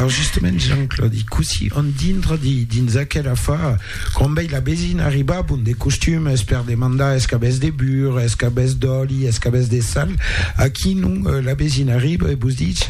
Alors justement, Jean-Claude, i cossí on dintra di, dins aquela fa, quan vei la besina arribar, bon, de costum es per demandar es qu'avès de bur, es qu'avès d'òli, es qu'avès de sal, aquí non, la besina arriba e vos ditz,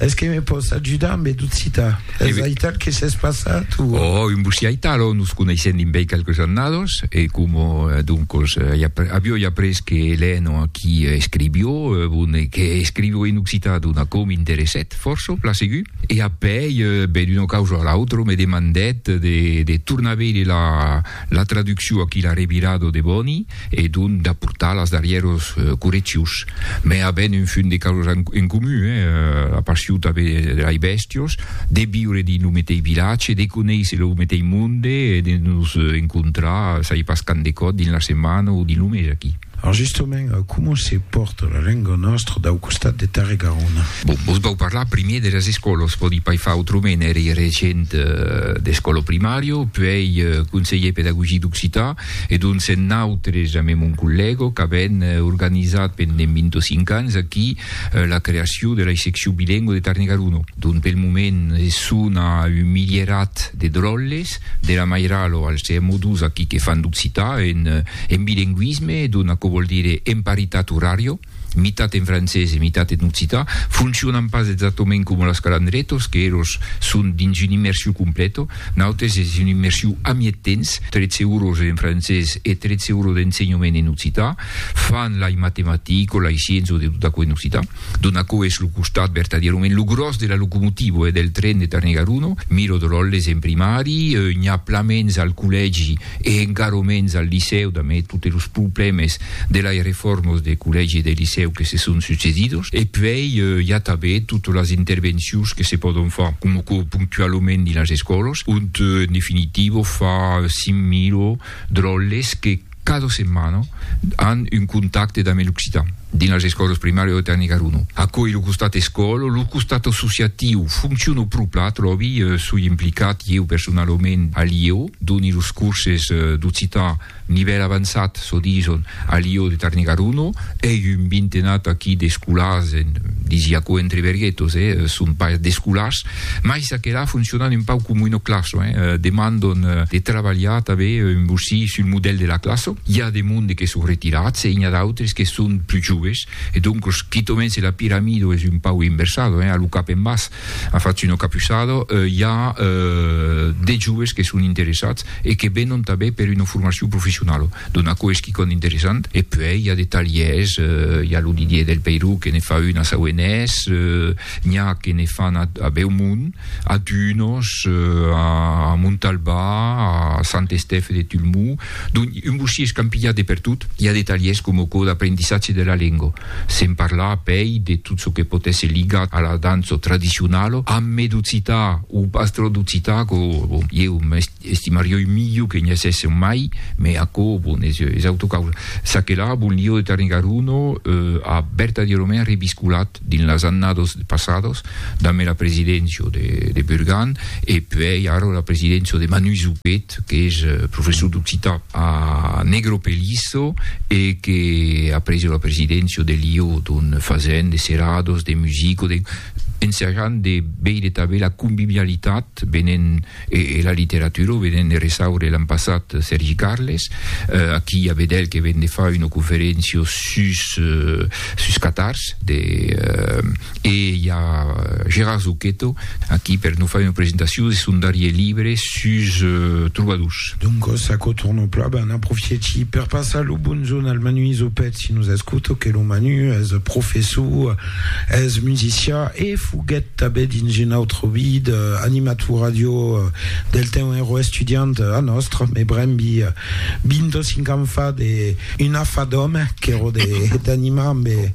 es que me pòs ajudar amb de dotzitar? Es aital que s'es passat? O... Oh, un bussi aital, oh, nos coneissem din bei quelques annados, e como, eh, doncos, eh, ja, abio ja pres que Eleno aquí eh, escrivio, eh, bon, eh, que escrivio en occitan d'una com interesset, forço, la segur, e apei, eh, ben d'una causa a l'autra, me demandet de, de tornar veire la, la traduccion aquí la revirado de Boni, e donc d'aportar las darrièros correccions, mès avent un fum de causas en comun, eh? la passion tanben de lai bèstios, de viure dins lo metei vilatge, de conéisser lo metei monde e de nos encontrar, sai pas quand de còp, dins la setmana o dins lo mes aquí. Aos justament, coma se pòrta la lenga nòstra dau costat de Tarregarona? Bon, vos vau parlar primièr de las escòlas, pòdi pas far autrament, èri regent d'escòla primària, puèi conselhèr pedagogic d'occitan, E donc se nautres amé mon collègo qu'avèn organizat pendent 25 ans aquí la creacion de la seccion bilengua de Tarn-et-Garonne. Donc pel moment son a un milierat de dròlles, de la mairà lo al CMO2 aquí que fan d'occitan en bilenguisme, donc aquò vòl dire en paritat orària. mitat en francés e mitat en occitan, foncionan pas exactament coma los calandretos, que eros son dins un immersiu completo, nautes es un immersiu a miet temps, 13 euros en francés e 13 euros d'ensenhament en occitan, fan lai matematic o lai sciença o de tot aquò en occitan, donc aquò es lo costat vertadièrament, lo gròs de la locomotiva e del tren de Tarn-e-Garonne, Miro de Lòlles en primari, n'i a plan mens al collègi, e encara mens al licèu damb totes los problèmes de lai reformas de collègi e de licèu que se son succedidos. E puèi i a tanben totas las intervencions que se pòdon far coma aquò punctualament dins las escòlas, ont en definitiva fa 5.000 dròlles que cada setmana an un contacte damb l'occitan. Dins las escòlas primàrias de Tèrni Garono, aquò es lo costat escòla, lo costat associatiu fonciona au pro plat, lòbi, soi implicat ieu personalament a l'IEO, doni los curses d'occitan nivèl avançat, çò dison, a l'IEO de Tèrni Garono, ei un vintenat aquí d'escolars, disi aquò entre verguetas, eh, son pas d'escolars, Mai ça que là foncionan un pauc coma una classa, hein, demandan de trabalhar tanben un bocí sul modèl de la classa. I a de monde que son retirats e i n'a d'autres que son plus joves. E doncos, quitament se la piramida es un pauc inversada, hein, a lo cap en bas, a fach una capuçada, i a de joves que son interessats e que venon tanben per una formacion professionala. Donc aquò es quicòm d'interessant. E puèi i a de talhièrs, i a lo Didier Delpeyrou que ne fa un a Sauenés, N'i a que ne fan a, a Beaumont, a Dunos, euh, a, a Montalbà, a Sant Estèfe de Tulmó. Donc, un vos sies campilhat de pertot. Hi a de talhiers coma quò d'aprendissatge de la lenga, sen parlar, pei, de tot çò que pòt èsser ligat a la dança tradicionala, a me d'occitan o pas trop d'occitan, quò, bon, ieu, mès, Estimaria un milhor que n'i sèsse mai, me aquò, bon, es autocausa. Ça que la, bon lio de Tarngaruno a vertadièrament reviscolat dins las annados passados, damb la presidéncia de Burgan e puèi ara la presidéncia de Manu Zuquet, qu'es professor d'occitan a Negro Pelisso e que a presi la presidéncia de lio d'on fasèn de serados de musica, ensajant de veir etablir la convivialitat venent e la literatura o venent de ressaure l'an passat Sergi Carles, aquí i a Bedèlh que ven de far una conferéncia sus sus Catars de e i a Gérard Zucchetto aquí per nos far una presentacion de son darrier libre sus trobadors. Doncos aquò torno plan ben aprofièchi per passar lo bonjorn al Manu Izopèt si nos escouta que lo Manu es professor Es musicià e foguèt tanben dins una autra vida animator radiò del temps èro estudiant a Nòstra, me brembi 25 ans fa de un afar d'òme qu'èro d'animar ambe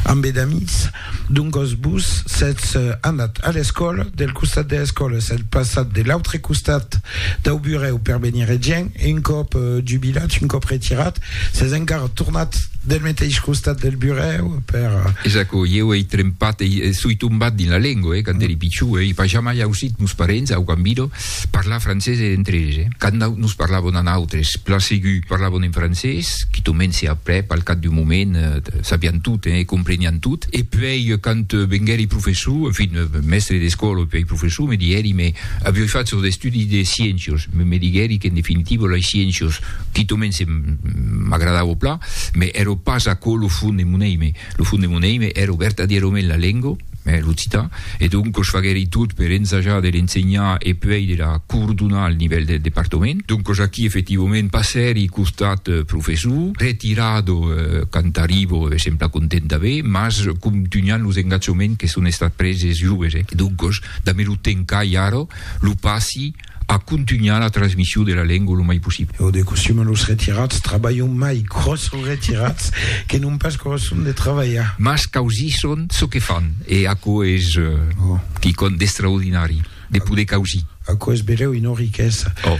ambe d'amics. Doncòs vos sètz anat a l'escòla, del costat de l'escòla sètz passat de l'autre costat dau burèu per venir regent, un còp jubilats, un còp retirat, Ses encara tornat del meteis costat del burèu per... Es aquò, ieu ei trempat, ei, soi tombat dins la lengua, eh, quand eri pichon, eh, pas jamai ausit nos parents, au Cambido, parlar francés e entre eles, eh. Quand nau, nos parlavon a nautres, plan segur, parlavon en francés, quitament se aprèp, al cap d'un moment, sabián tot, eh, e comprenián tot. E puèi, quand venguèri professor, en fin, mèstre d'escòla e puèi professor, me dihèri, me, avioi fach sos estudis de sciéncios, me diguèri qu'en definitiva, lei sciéncios, Quitòment se m'agradava o plan, me ero pas aquò lo fond de mon èime. Lo fond de mon èime ero vertadièrament la lengo, eh, l'occitan, e donc cosh faguèri tot per ensajar de l'ensenhar e puèi de la cordonar al nivèl del departament. Donc cosh aquí efectivament passèri costat professor, retirado quand arribo e sempre content d'aver, mas contunhant los engatjoments que son estat preses joves, eh. E donc cosh damb lo temps qu'a iara lo passi, a contunhar la transmission de la lenga lo mai possible. Ò, de costuma los retirats trabalhon mai quò's son retirats que non pas quò's son de trabalhar. Mas causisson çò que fan e aquò es quicòm d'estraordinari, de poder causir. Aquò es beleu, una riquesa. Ò.